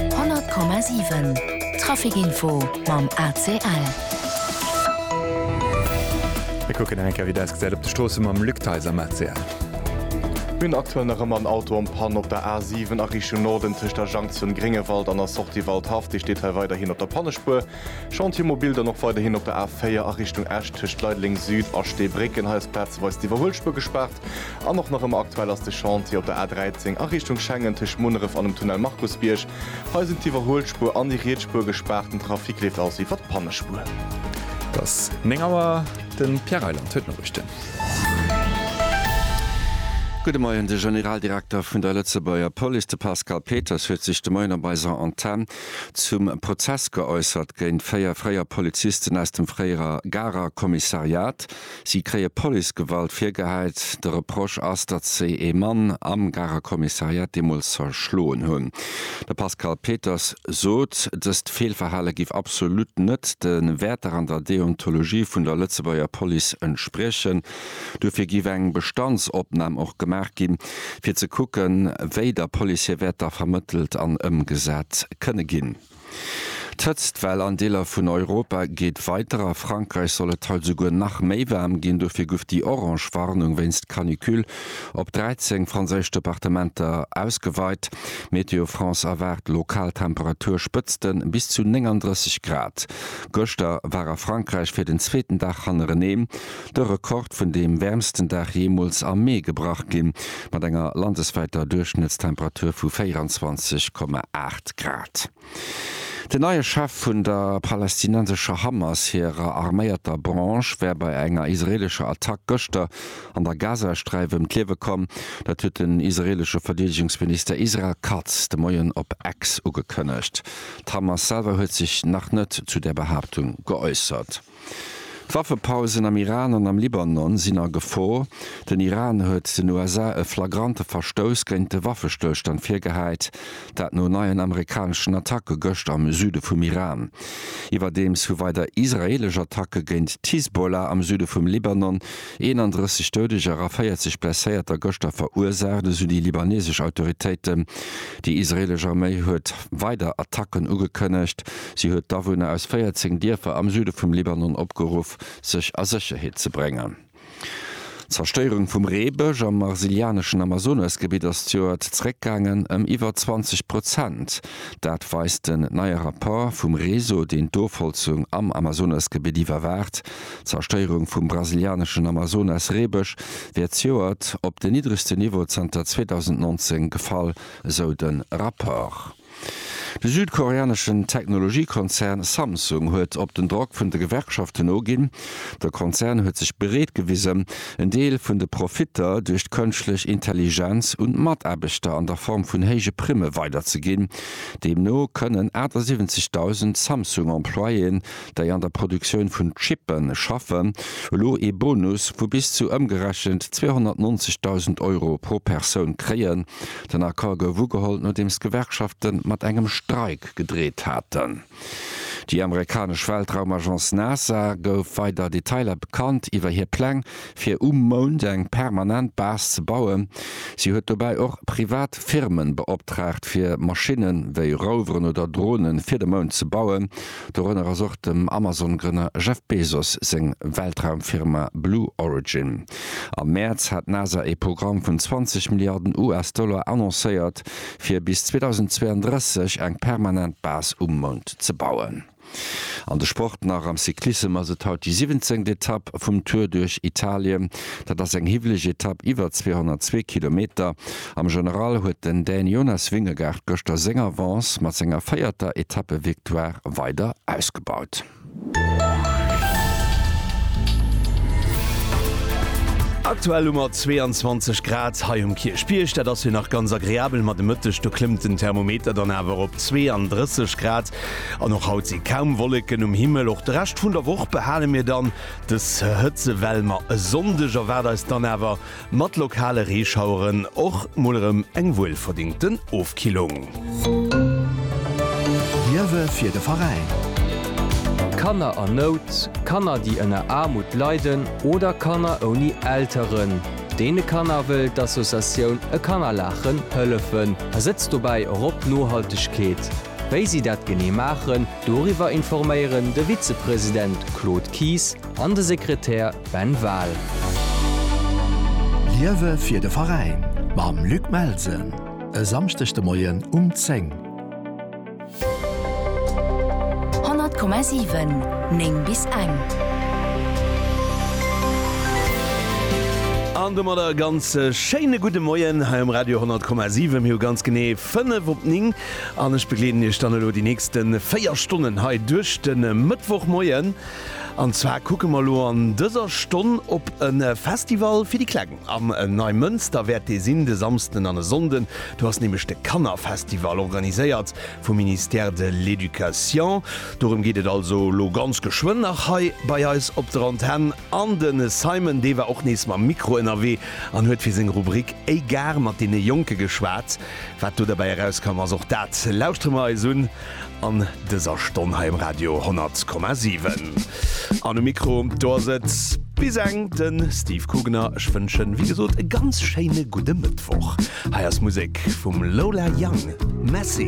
100,7 Traficinfo mam ACL. Mir kucken nach eng Kéier wéi dat ausgesäit op de Stroosse mam Luc Theis am ACL. Mir hunn aktuell nach ëmmer en Auto en Panne op der A7 a Richtung Norden tëscht der Junction Gréngewald an der Sortie Waldhaff. Déi steet hei weiderhin op der Pannespuer. Chantier mobil dann och weiderhin op der A4 a Richtung Esch tëscht Leideleng Süd a Steebrécken. Hei ass plazeweis d'Iwwerhuelspuer gespaart. An och nach ëmmer aktuell ass de Chantier op der A 13 a Richtung Schengen tëscht Munneref an dem Tunnel Markusbierg. Hei sinn d'Iwwerhuelspuer an déi riets Spuer gespaart, den Trafic leeft aus iwwert d'Pannespuer. Et ass 9 Auer, de Pierre Reyland huet d'Noriichten. Gudde Moien, De Generaldirekter vun der Lëtzebuerger Police, de Pascal Peters, huet sech de Moien op eiser Antenn zum Prozess geäussert géint véier fréier Polizisten aus dem fréiere Garer Kommissariat. Si kréie Policegewalt virgehäit. De Reproche ass, datt si ee Mann am Garer Kommissariat deemools zerschloen hunn. De Pascal Peters sot, dëst Feelverhale giff absolut net de Wäerter an der Deontologie vun der Lëtzebuerger Police entspriechen. Dofir giff eng Bestandsopnam och gemaach ginn, fir ze kucken, wéi der Police hir Wäerter vermëttelt an ëmgesat kënne ginn. D'Hëtztwell an Deeler vun Europa geet weider. A Frankräich soll et haut esouguer nach méi waarm ginn. Dofir guff déi orange Warnung wéinst Canicule op 13 franséisch Departementer ausgeweit. Météo France erwaart lokal Temperaturspëtzte bis zu 39 Grad. Gëschter war a Frankräich fir den zweeten Dag hannerenee de Rekord vun deem wäermsten Dag jeemools am Mee gebrach ginn, mat enger landeswäiter Duerchschnëttstemperatur vu 24,8 Grad. Den neie Chef vun der palästinensescher Hamas hirer arméierter Branche wär bei enger israeelescher Attack gëschter an der Gazasträif ëm d'Liewe komm. Dat huet den israeelesche Verdeedegungsminister Israel Katz de Moien op X ugekënnegt. D'Hamas selwer huet sech nach net zu där Behaaptung geäussert. D'Waffepausen am Iran an am Libanon sinn a Gefor. Den Iran huet den USA e flagrante Verstouss géint de Waffestëllstand virgehäit, dat no neien amerikaneschen Attacke gëscht am Süde vum Iran. Iwwerdeems hu weider israeelesch Attacke géint d'Hisbollah am Süde vum Libanon 31 Doudeger a 40 Blesséierter gëschter verursaacht, esou déi libanesesch Autoritéiten. Déi israeelesch Arméi huet weider Attacken ugekënnegt. Si huet d'Awunner aus 14 Dierfer am Süde vum Libanon opgeruff, sech a Sécherheet ze bréngen. D'Zerstéierung vum Reebësch am brasilianeschen Amazonas-Gebitt ass d'Joert zeréckgaangen ëm iwwer 20 Prozent. Dat weist en neie Rapport vum Réseau, deen d'Ofholzung am Amazonas-Gebitt iwwerwaacht. D'Zerstéierung vum brasilianeschen Amazonas-Reebësch wär d'Joert op den niddregsten Niveau zanter 2019 gefall, esou de Rapport. De südkoreaneschen Technologiekonzern Samsung huet op den Drock vun de Gewerkschaften noginn. De Konzern huet sech bereet gewisen, en Deel vun de Profitter duerch d'kënschtlech Intelligenz un d'Mataarbechter an der Form vun héije Primme weiderzeginn. Deemno kënnen 78.000 Samsung-Employéen déi an der Produktioun vun Chippe schaffen, elo ee Bonus vu bis zu ëmgerechent 290.000 Euro pro Persoun kréien. Den Accord gouf ugeholl, nodeems d'Gewerkschafte mat engem Streik gedreet haten. Déi amerikanesch Weltraumagence NASA gouf weider Detailer bekannt iwwer hir Pläng, fir um Mound eng permanent Base ze bauen. Si huet dobäi och privat Firme beoptraagt, fir Maschinne wéi Roveren oder Drone fir de Mound ze bauen. Dorënner ass och dem Amazon-Grënner Jeff Bezos seng Weltraumfirma Blue Origin. Am Mäerz hat d'NASA ee Programm vun 20 Milliarden US-Dollar annoncéiert, fir bis 2032 eng permanent Base um Mound ze bauen. An de Sport nach, Am Cyclissem ass et haut déi siwwenzéngt Etapp vum Tour duerch Italien. Dat ass eng hiwweleg Etapp iwwer 202 Kilometer. Am General huet den Dän Jonas Vingegaard gëschter seng Avance mat senger véierter Etappevictoire weider ausgebaut. Aktuell hu mer 22 Grad hei um Kierchbierg, dat ass jo nach ganz agreabel, ma de Mëtteg do klëmmt den Thermometer dann awer op 32 Grad an och haut si kaum Wolleken um Himmel. Och de Rescht vun der Woch behale mir dann des Hëtzewell, ma e Sonndeg erwaart eis dann awer Mat lokale Reeschaueren och mol erëm eng wuelverdingten Ofkillung. D'Liewe fir de Veräin. Kanner an Nout, Kanner déi ënner Aarmut leiden oder Kanner ouni Elteren. Deene Kanner wëll d'Associatioun E Kanner laachen hëllefen a setzt dobäi och op Nohaltegkeet. Wéi si dat genee maachen, doriwwer informéieren de Vizepresident Claude Kies, An de Sekretär Ben Wahl. Liewe fir de Veräin mam Luc Melsen e Samschdeg de Moien um 10. 100,7, 9 bis eng. An domat e ganz schéine gudde Moien hei um Radio 10,7. Mir hu ganz genee 5 op 9 an ech begleeden Iech dann elo déi nächste 4 Stonnen hei duerch de Mëttwochmoien. An zwar kucke mer elo an dëser Stonn op e Festival fir déi Kleng. Am Neimënster wäert dee sinn, de Samsden an e Sonnden. Do ass nämlech de Kannerfestival, organiséiert vum Ministère de l'Éducation. Dorëm geet et also elo ganz geschwënn nach hei bei eis op der Antenn. An de Simon, dee war och nees mam Mikro ënnerwee an huet fir seng Rubrik Égare mat deene Jonke geschwat. Wat do derbäi erauskomm ass, och dat lauschtere mer eis un. An dëser Stonn hei um Radio 10,7 an um Mikro do ass et bis eng de Steve Kugener. Ech wënschen, wéi gesot, e ganz schéine gudde Mëttwoch. Hei ass Musek vum Lola Young, Messy.